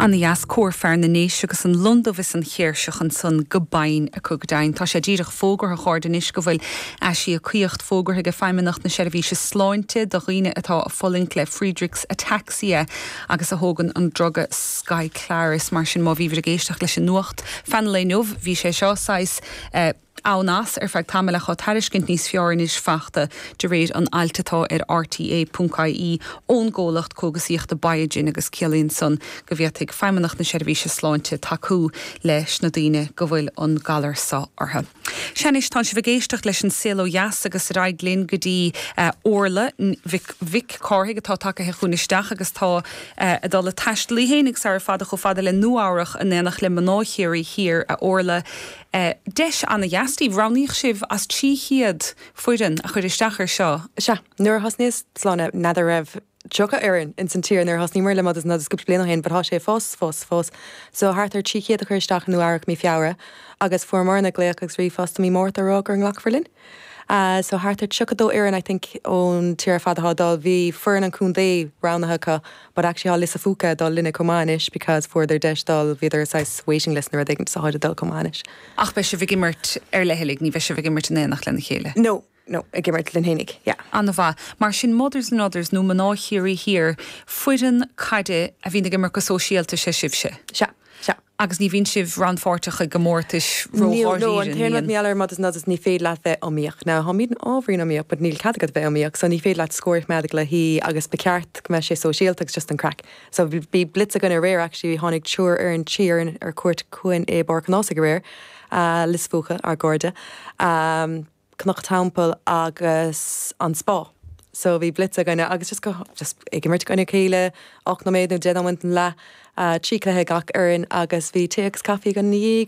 Ana dheas Cór Fear na nDéise agus an londubh is an chéirseach ansan go binn acu go deimhin. Tá sé díreach fógartha os ard anois go bhfuil aisíocaíocht fógartha aige Feidhmeannacht na Seirbhíse Sláinte do dhaoine atá a fulaingt le Friedreich's Ataxia agus a thógann an druga Skyclarys. Mar sin má bhíobhair ag éisteacht leis an nuacht fan lae inniu bhí sé seo saghas eh. ann as ar feadh tamaill ach tá tairiscint níos fearr anois fachta de réir an ailt atá ar RTÉ punc IE ón gcomhlacht cógasaíochta Biogen agus ciallaíonn san go bhféadfaidh Feidhmeannacht na Seirbhíse Sláinte tacú leis na daoine go bhfuil an galar so orthu. Sea anois, tánn sibh ag éisteacht leis an Saol Ó Dheas agus ar aghaidh linn go dtí Órla Mhic Cárthaigh atá tagtha chugainn isteach agus tá ag dul a taisteal í féin sara fada chomh fada le Nua Eabhrach in éineacht le mná Chiarraí Thiar. A Órla. Eh, deis ana-dheas daoibh. Roghnaíodh sibh as 300 foireann a chuir isteach ar seo. Sea, nuair a thosnaíos, is dóigh liom, n'fheadar raibh tríocha fhoireann ins an tír nuair a thosnaíomar le Mothers and Others cúpla bliain ó shin but thá sé ag fás, fás, fás so thart ar 300 a chuir isteach i Nua Eabhrac mí Feabhra agus fuair Morna glaoch agus ríomhphost i mí Márta a rá gur glacadh linn. Eh, so thart ar tríocha dó fhoireann I think ón tír ar fad athá ag dul. Bhí foireann an contae roghnaithe acu. But actually thá Lios Póil ag dul linne chomh maith anois because fuaireadar deis dul, bhíodar ar saghas waiting list nó rud éigin 'gus táid ag dul chomh maith anois. Ach beidh sibh ag imirt ar leithligh, ní bheidh sibh ag imirt in éineacht lena chéile? No, no, ag imirt linn fhéinig, yeah. Ana-mhaith. Mar sin Mothers and Others nó Mná Chiarraí Thiar, foireann caide a bhíonn ag imirt go sóisialta, 'sé sibhse? Sea. Sea. Agus ní bhíonn sibh rannpháirteach i gcomórtais ró-dháiríre, níl? No, an t-aon rud mar gheall ar Mothers and Others is ní féidir leat bheith iomaíoch. Now, táimid ábhairín iomaíoch but níl cead agat bheith iomaíoch so ní féidir leat scór a choimeád le haghaidh agus ba cheart go mbeadh sé sóisialta agus just an craic. So bhí blitz againn aréir actually tháinig triúr fhoireann, trí fhoireann ar cuairt chugainn i bPáirc an Ághasaigh aréir, Lios Póil, ár gcairde. Cnoc Teampaill agus an Spá. So bhí blitz againne agus just go, just ag imirt i gcoinne a chéile, ocht nóiméad nó deich nóiméad an leath, trí chluiche ag gach fhoireann agus bhí tae agus caifí againn ina dhiaidh.